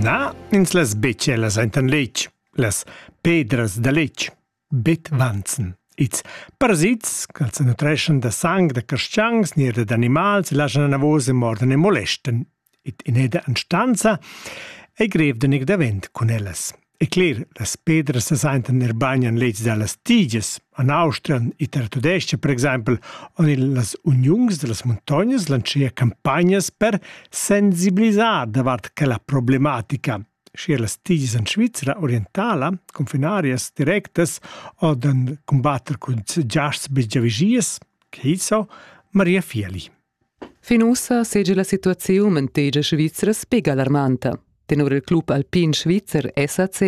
Na, ins las betschellas aintan letg, las pedras da letg, betvanzen. Ils parasits ch'als nutreschan da sang da carstgangs ni da animals laschan anavos e mordan e molestan. Id in'eda anstanza ei grev da neg davent cun ellas. E cler, las pedras sesaintan er bain en leds da las tigias. En Austria, en Italia tudesca, per exempel, on las uniuns da las muntognas lancia campagnas per sensibilisar davart quella problematica. Sche las tigias en Svizzera orientala, confinarias directas o den combatter cun giasts bigiavigias, che so, Maria Fieli. Fin ussa seigi la situaziun en tegia svizra sbig alarmanta. Tenor il club alpin svizzer SAC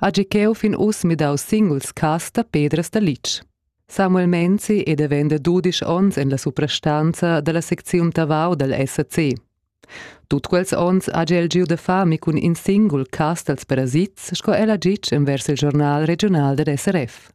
hagi cheu fin uss midau singuls cass da pedras da litg. Samuel Menzi è davent da dudisch onns en la suprastanza dalla secziun Tavau dal SAC. Tut quels onns ha el giu da fami cun in singul cas dals parasits, sco el ha ditg envers il giornal regional dad SRF.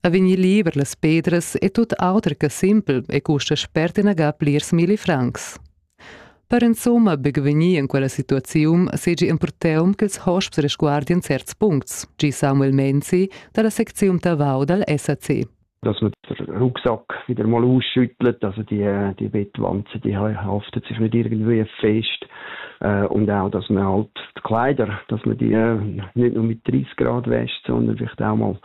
a vegnir liber las pedras e tut auter che simpel e custa spert inaga plirs milli francs. Per insumma buc vegnir in quella situaziun segi empurteum ch'ils hosps resguardien certs puncts, gi Samuel Menzi dalla secziun Tavau dal SAC. Dass man den Rucksack wieder mal ausschüttelt, also die, die Bettwanzen, die haftet sich nicht irgendwie fest. Äh, und auch, dass man halt die Kleider, dass man die äh, nicht nur mit 30 Grad wäscht, sondern vielleicht auch mal